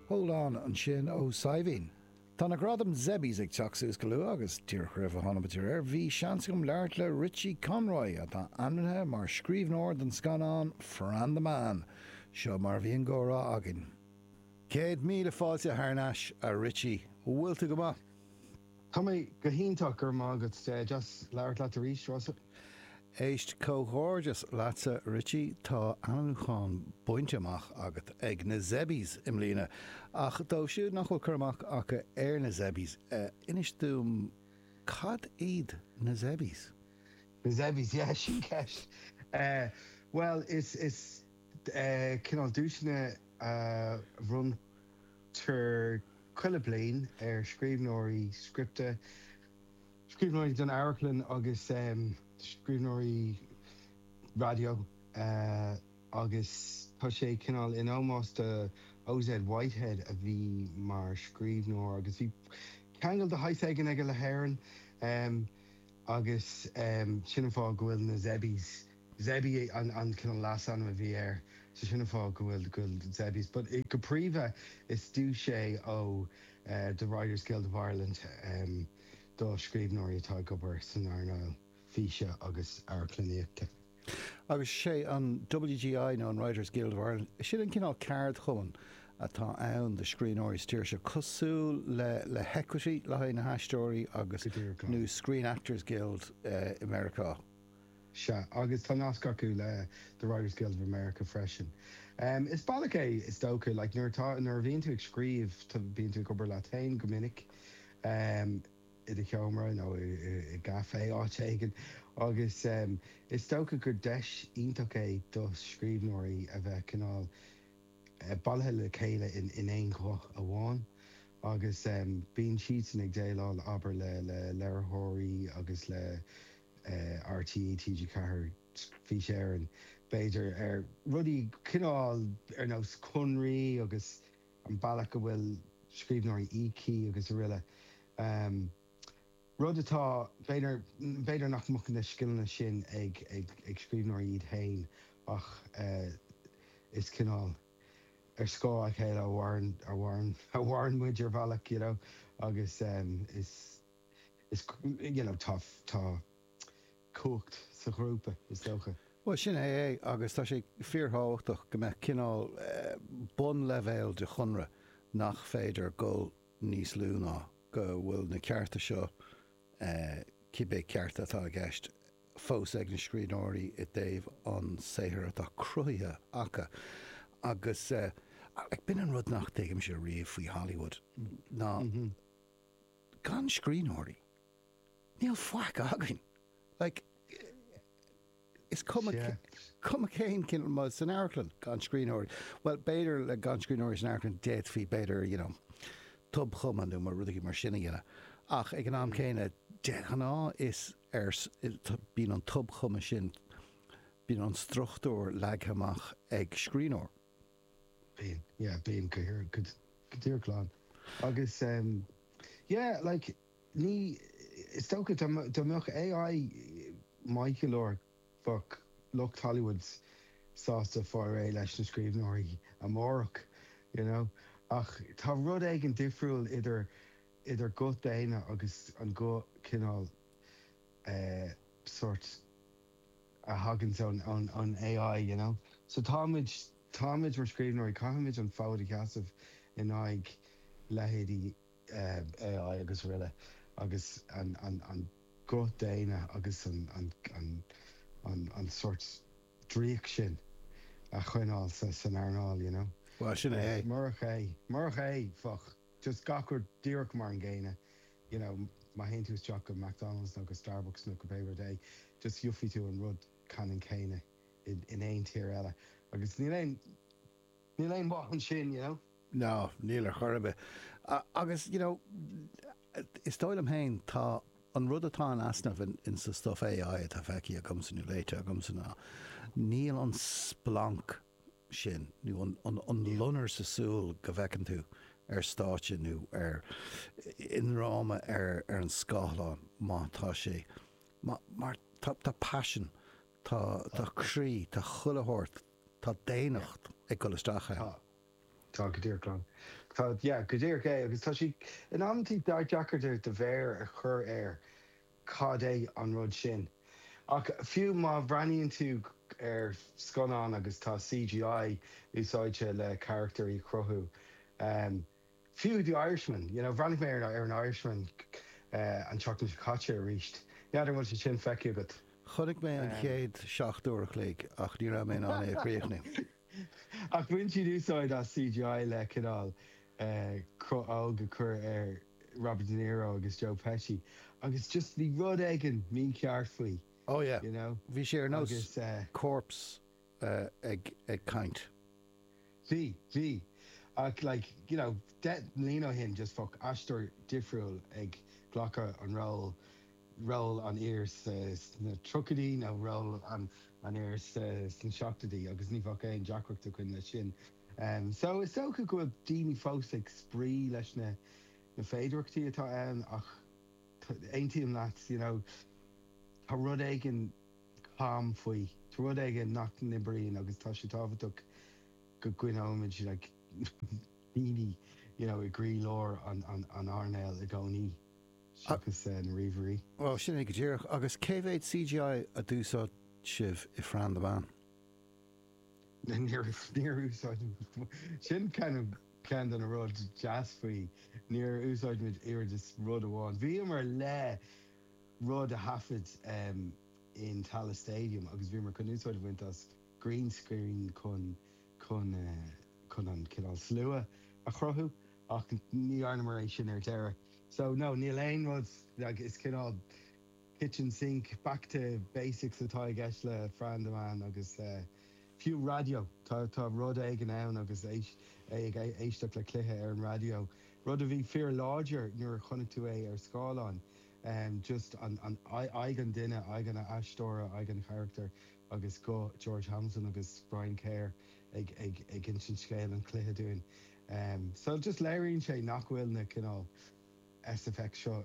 Hold on ansin Ó Saidhbhín. Tá na gradaim Zebbies ag teacht suas go luath agus tír-chroibh atá ainmnithe air. Bhí seans agam labhairt le Richie Conroy, atá ainmnithe mar scríbhneoir don scannán Fran the Man. Seo mar a bhí an gcomhrá againn. Céad míle fáilte thar n-ais, a Richie. Bhfuil tú go maith? Tá mé go hiontach, go raibh maith agat. Deas labhairt leat arís, Rossa. Éist, comhghairdeas leatsa Richie, tá ainmniúchán bainte amach agat ag na Zebbies i mbliana. Ach dóibh siúd nach bhfuil cur amach acu ar na Zebbies, inis dúinn cad iad na Zebbies? Na Zebbies, yeah, sin ceist. Bhuel, is. Cineál duaiseanna a bhronntar chuile bliain ar scríbhneoirí scripte, scríbhneoirí don amharclann agus scríbhneoirí raidió agus tá sé cineál in ómós do OZ Whitehead a bhí mar scríbhneoir agus bhí ceangal de shaghas éigin aige le hÉirinn agus sin an fáth go bhfuil na Zebbies Zebby an cineál leasainm a bhí air so sin an fáth go bhfuil go bhfuil Zebbies but go príomha is duais í ó The Writers Guild of Ireland do scríbhneoirí atá ag obair san earnáil físe agus amharclannaíochta. Agus is é an WGI nó an Writers Guild of Ireland, sin an cineál ceardchumann atá ann do scríbhneoirí sa tír seo, cosúil le le hEquity le haghaidh na haisteoirí agus nó Screen Actors Guild i Meiriceá. Sea, agus tá nasc acu le The Writers Guild of America freisin. Is bealach é, is dócha, like nuair atá, nuair a bhíonn tú ag scríobh, tá, bíonn tú ag obair leat féin go minic, em, i do sheomra nó i, i, i gcafé, áit éigin, agus, em, is dócha gur deis iontach é do scríbhneoirí a bheith cineál, eh, bailithe le chéile in, in aon ghuth amháin agus, em, bíonn siadsan ag déileáil, abair, le, le léiritheoirí agus le, RTÉ TG4, Fís Éireann, b'fhéidir, ar rudaí cineál ar nós conraí agus an bealach a bhfuil scríbhneoirí íoctha agus araile. Rud atá, b'fhéidir, b'fhéidir nach mbeadh na scileanna sin ag scríbhneoirí iad féin ach is cineál ar scáth a chéile a mhair a mhaireann muid ar bhealach, you know, agus is. is you know tá tá cumhacht sa ghrúpa is dócha. Bhuel sin é é agus tá sé fíorthábhachtach go mbeadh cineál bunleibhéal de chonradh nach féidir dhul níos lú ná go bhfuil na cearta seo, cibé cearta atá i gceist, fós ag na scríbhneoirí i dtaobh an saothar atá cruthaithe acu. Agus b'in an rud nach dtuigimse riamh faoi Hollywood ná, gan scríbhneoirí, níl faic againn. Like, is cuma, cuma cén cin, ma san amharclann, gan scríbhneoirí, well, b'fhéidir le gan scríbhneoirí san amharclann, d'fhéadfaí, b'fhéidir, you know, tobchumadh nó rudaí mar sin a dhéanamh. Ach ag an am céanna, de ghnáth is ar, bíonn an tobchumadh sin, bíonn an struchtúr leagtha amach ag scríbhneoir. Bíonn, yeah, bíonn go díreach, go díreach lán agus em yeah like ní, is dócha dá dá mbeadh AI maith go leor bheadh lucht Hollywood sásta fáil réidh leis na scríbhneoirí amárach you know ach tá rud éigin difriúil idir idir guth daonna agus an guth cineál eh sórt a thagann ón AI you know so táimid, táimid mar scríbhneoirí, caithfimid an fód a sheasamh in aghaidh leithéidí AI agus aroile agus an an guth daonna agus an an an an an sórt draíocht sin a choinneáil san earnáil you know. Bhuel, sin é. Murach é, murach é, bheadh. just gach rud díreach mar an gcéanna you know má théann tú isteach go McDonalds nó go Starbucks nó go pé rud é just gheofaidh tú an rud ceannann céanna in aon tír eile agus níl aon níl aon mhaith ansin you know. no níl ar chor ar bith agus you know is dóigh liom féin tá an rud atá in easnamh in in sa stuff AI atá feicthe agamsa nó léite agamsa ná níl an splanc sin, nó an loinnir sa súil go bhfeiceann tú ar stáitse nó ar, i ndráma ar an scáthlán má tá sé, mar tá paisean, tá croí, tá chuile shórt, tá daonnacht ag dul isteach ann. Tá, tá go díreach Gráinne. Tá, yeah, go díreach é agus tá sé in amantaí deacair do mhéar a chur air. Cad é an rud sin? Ach fiú má bhreathnaíonn tú ar scannán agus tá CGI úsáidte le carachtair a chruthú, fiú The Irishman, you know, bhreathnaigh mé ar an Irishman an tseachtain seo caite arís, n'fheadar an bhfuil sé sin feicthe agat? Chonaic mé an chéad seacht uair an chloig ach ní raibh mé in ann é a chríochnú. Ach bhain siad úsáid as CGI le cineál. eh, cruth óg a chur ar Robert De Niro agus Joe Pesci agus just bhí rud eigin mícheart faoi Oh yeah. you know Bhí sé ar nós agus eh, corpse eh, ag, ag caint. bhí, bhí ach like you know deich mbliana ó shin just fuck aisteoir difriúil ag glacadh an ról, ról an fhir sa, sna tríochaidí nó ról an, an fhir sa, sna seachtaidí agus ní bheadh aon deacracht againn leis sin. So, is dócha go bhfuil daoine fós ag spraoi leis na na féidearachtaí atá ann ach aontaím leat, you know, tá rud éigin cam faoi, tá rud éigin nach n-oibríonn agus tá sé tábhachtach go gcoinneoimid like daoine, you know, i gcroílár an an earnáil i gcónaí seachas na ríomhairí. Bhuel, sin é go díreach. Agus cé mhéad CGI a d'úsáid sibh i Fran the Man? Níor úsáid muid, sin kind of ceann de na rudaí deasa faoi, níor úsáid muid oiread is rud amháin. Bhíomar le rud a thaifead in Tallaght Stadium agus bhíomar chun úsáid a bhaint as green screen chun chun an cineál slua a chruthú ach ní dhearnamar é sin ar deireadh. So no, níl aon rud, like is cineál, kitchen sink, back to basics atá i gceist le Fran the Man agus fiú raidió. Tá rud éigin ann agus é ag éisteacht le cluiche ar an raidió, rud a bhí fíor láidir nuair a chonaic tú é ar scáileán, just aghaidh an duine, aghaidh an aisteora, aghaidh an charachtair agus guth George Hamilton agus Brian Kerr ag insint scéal an chluiche dúinn. So just léiríonn sé nach bhfuil na cineál SFX seo,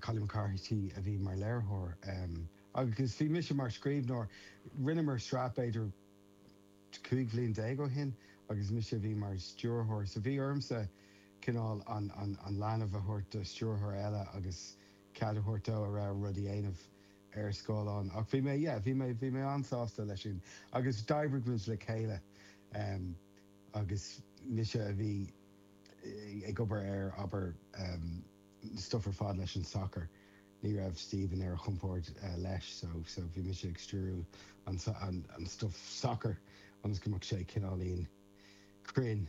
Collie McCarthy a bhí mar léiritheoir agus bhí mise mar scríbhneoir. Rinneamar sraith b'fhéidir 15 bhliain ó shin agus mise a bhí mar stiúrthóir. So bhí ormsa cineál an leanbh a thabhairt do stiúrthóir eile agus cead a thabhairt dó a rogha rud a dhéanamh ar scáileán. Ach bhí mé, yeah, bhí mé, bhí mé an-sásta leis sin. Agus d'oibrigh muid le chéile agus mise a bhí. ag obair ar, abair, an stuif ar fad leis an sacar. Ní raibh Stephen ar a chompord leis so so bhí mise ag stiúrú an stuif sacair ionas go mbeadh sé cineáilín cruinn.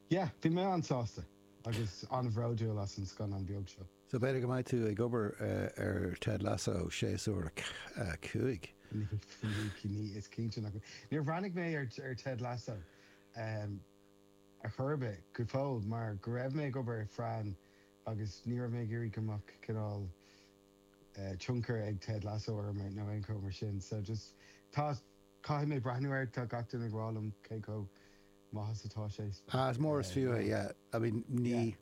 Yeah, bhí mé an-sásta agus an-bhródúil as an scannán beag seo. So b'fhéidir go mbeidh tú ag obair ar Ted Lasso séasúr a cúig? Ní, ní, ní, is cinnte nach mbeidh. Níor bhreathnaigh mé ar Ted Lasso. Em. ar chor ar bith. go fóill mar go raibh mé ag obair ar Fran agus ní raibh mé ag iarraidh go mbeadh cineál eh. tionchar ag Ted Lasso orm ar nó aon cheo mar sin. So just tá caithfidh mé breathnú air tá gach duine ag rá liom cé chomh maith is atá sé. Ah is mór is fiú é yeah. I mean ní. Yeah.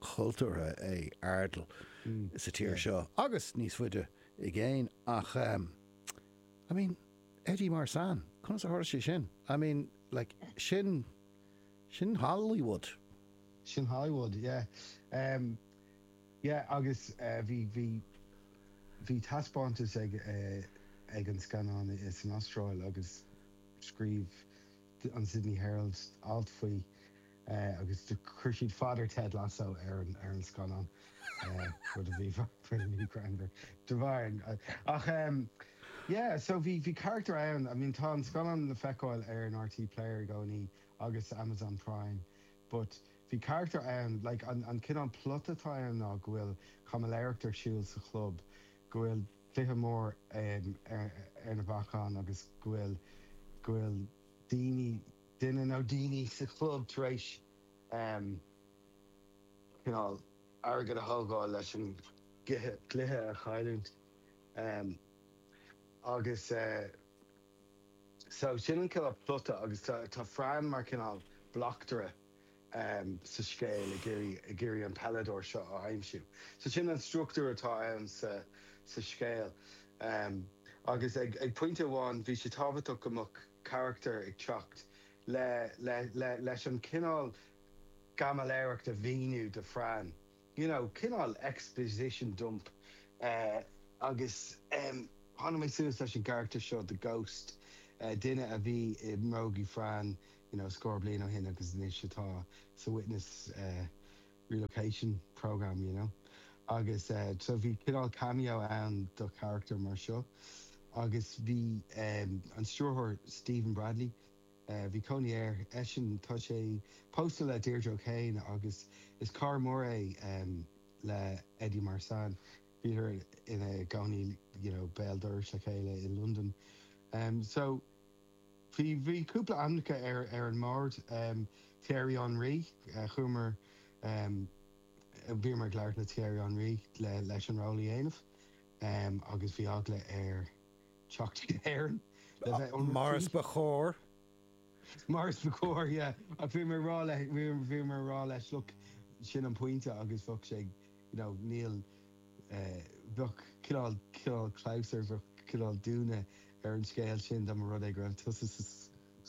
cultúrtha é Ardal sa tír seo agus níos faide i gcéin ach I mean Eddie Marsan conas a tharla sé sin? I mean like sin, sin Hollywood. Sin Hollywood yeah. Yeah agus bhí, bhí, bhí taispeántas ag, ag an scannán san Astráil agus scríobh an Sydney Herald alt faoi. agus do chuir siad Father Ted Lasso ar an ar an scannán rud a bhí pretty greannmhar de bharr an ach em yeah so bhí bhí carachtar ann I mean tá an scannán le feiceáil ar an RTÉ player i gcónaí agus Amazon Prime but bhí carachtar ann like an an cineál plot atá ann ná go bhfuil caimiléireacht ar siúl sa chlub go bhfuil cluiche mór em ar ar na bacáin agus go bhfuil go bhfuil daoine duine nó daoine sa chlub tar éis cineál airgead a thógáil leis an gcluiche a chailliúint agus so sin an cineál plota agus tá Fran mar cineál bleachtaire sa scéal ag iarraidh an peileadóir seo a aimsiú. So sin an struchtúr atá ann sa scéal agus ag pointe amháin bhí sé tábhachtach go mbeadh. carachtar ag teacht le leis an cineál caimiléireacht a mhíniú do Fran, you know, cineál exposition dump agus em tháinig mé suas leis an gcarachtar seo The Ghost, duine a bhí i mbrógaí Fran, you know, scór bliain ó shin agus anois atá sa witness eh. relocation programme, you know. Agus eh, so bhí cineál cameo ann do charachtar mar seo agus bhí eh an stiúrthóir Stephen Bradley, eh bhí cónaí air, eisean, tá sé pósta le Deirdre O'Kane agus is cara mór é em le Eddie Marsan, bhíodar ina gcónaí you know béal dorais le chéile i Londain. Em so. Bhí bhí cúpla ainmneacha ar ar an mbord. Thierry Henry, chuamar bhíomar ag labhairt le Thierry Henry le leis an ról a dhéanamh agus bhí eagla air teacht chuig Éirinn le bheith ionraic Mar is faoi. ba chóir. Mar is ba chóir, yeah. Ach bhíomar ag rá leis bhíomar ag rá leis, look, sin an pointe agus bheadh sé ag you know níl eh bheadh cineál cineál clabhsúr bheadh cineál dúnadh ar an scéal sin dá mba rud é go raibh tusa sa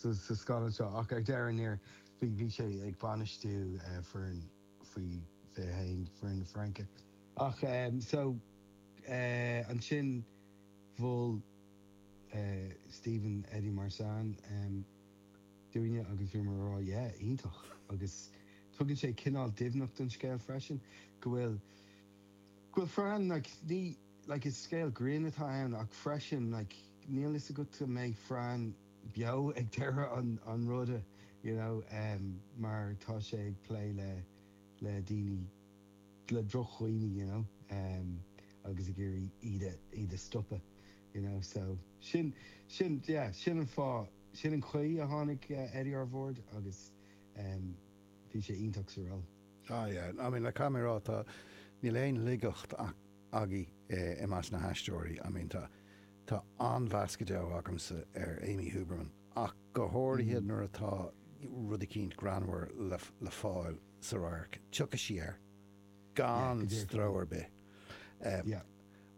sa sa scannán seo ach ar deireadh thiar bhí bhí sé ag bainistiú eh foireann faoi fiche a haon foireann na Fraince ach em so eh ansin mhol eh Stephen Eddie Marsan em dúinne agus bhíomar ag rá yeah, iontach agus tugann sé cineál doimhneacht don scéal freisin go bhfuil, go bhfuil Fran like ní, like is scéal grinn atá ann ach freisin like níl 'fhios agat an mbeidh Fran beo ag deireadh an, an ruda you know ehm mar tá sé ag plé le, le daoine, le drochdhaoine you know ehm agus ag iarraidh iad a, iad a stopadh. you know so sin sin yeah sin an fáth sin an chaoi a tháinig Eddie ar bord agus em bhí sé iontach sa ról. Ah yeah I mean like caithfidh mé a rá tá níl aon laigeacht agaibh i measc na haisteoirí I mean tá tá an-mheas go deo agamsa ar Amy Huberman ach go háirithe nuair atá rud eicínt greannmhar le le fáil sa radharc tiocfaidh sí air gan stró ar bith em yeah.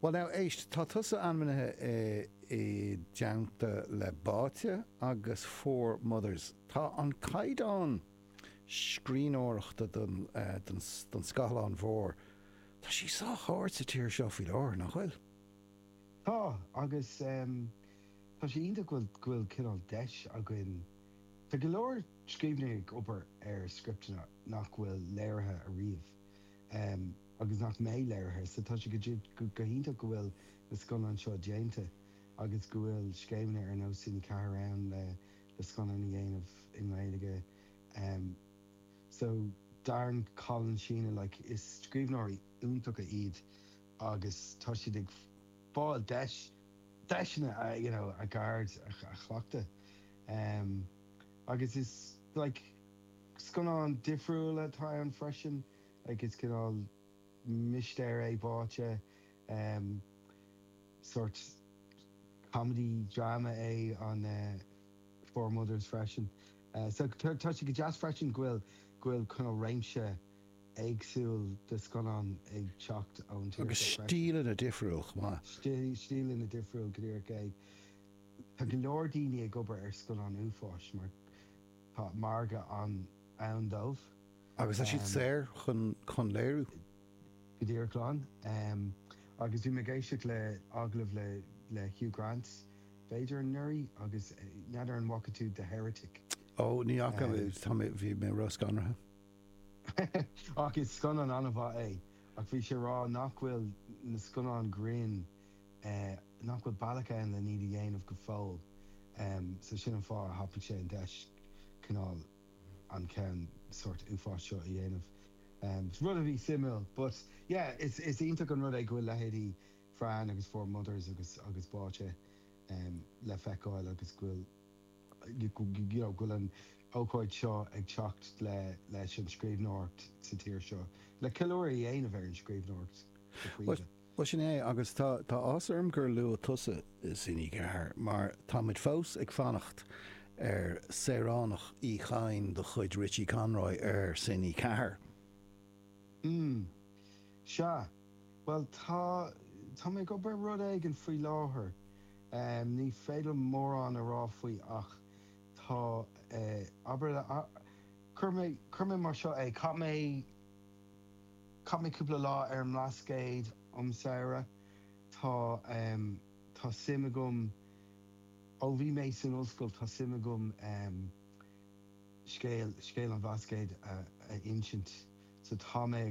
Bhuel now, éist, tá tusa ainmnithe i dteannta le Báite agus Four Mothers. Tá an caighdeán scríbhneoireachta don scáileán mhór, tá sé sách ard sa tír seo faoi láthair, nach bhfuil? Tá, agus tá sé iontach go bhfuil cineál deis againn, tá go leor scríbhneoirí ag obair ar scripteanna nach bhfuil léirithe ariamh. agus nach mbeidh léirithe. So tá sé go hiontach go bhfuil na scannáin seo déanta agus go bhfuil scéimeanna ar nós Cine 4 ann le scannáin a dhéanamh i nGaeilge. So Darren, Colin, Sheena, like is scríbhneoirí iontacha iad agus tá siad ag fáil deis, deiseanna you know a gceird a chleachtadh agus is like scannáin difriúla atá ann freisin. like is cineál mistéir é Báite em sórt comedy drama é an eh Four Mothers freisin eh so tá tá sé go deas freisin go bhfuil go bhfuil cineál réimse éagsúil de scannáin ag teacht ón tír seo freisin. Agus stíleanna difriúil chomh maith. Stí stíleanna difriúil go díreach é. Tá go leor daoine ag obair ar scannáin uafáis mar tá margadh an ann dóibh. Agus tá siad saor chun léiriú. go díreach glan. Agus bhí mé ag éisteacht le agallamh le le Hugh Grant b'fhéidir anuraidh agus n'fheadar an bhfaca tú The Heretic? Ó, ní fhaca, tá mé, bhí mé róscanraithe. Ach is scannán an-mhaith é. Ach bhí sé ag rá nach bhfuil na scannáin grinn, nach bhfuil bealach ann len iad a dhéanamh go fóill. So sin an fáth a thapaigh sé an deis cineál. an ceann sórt uafáis seo a dhéanamh. Rud a bhí suimiúil but yeah is is iontach an rud é go bhfuil leithéidí Fran agus Four Mothers agus agus Báite le feiceáil agus go bhfuil you know go bhfuil an ócáid seo ag teacht le leis an scríbhneoireacht sa tír seo le ceiliúradh a dhéanamh ar an scríbhneoireacht go príomha. Bhuel sin é agus tá tá áthas orm gur luaigh tusa Cine Ceathair mar tá muid fós ag fanacht ar Saoránach Uí Chatháin de chuid Richie Conroy ar Cine Ceathair. Mm. Sea. Bhuel tá tá mé ag obair ar rud éigin faoi láthair. Em ní féidir liom mórán a rá faoi ach tá eh abair cuirfidh mé cuirfidh mé mar seo é chaith mé Chaith mé cúpla lá ar an mBlascaod um samhradh. Tá, em, tá suim agam, ó bhí mé san ollscoil, tá suim agam, em, scéal, scéal an Bhlascaoid a, a insint. So tá mé.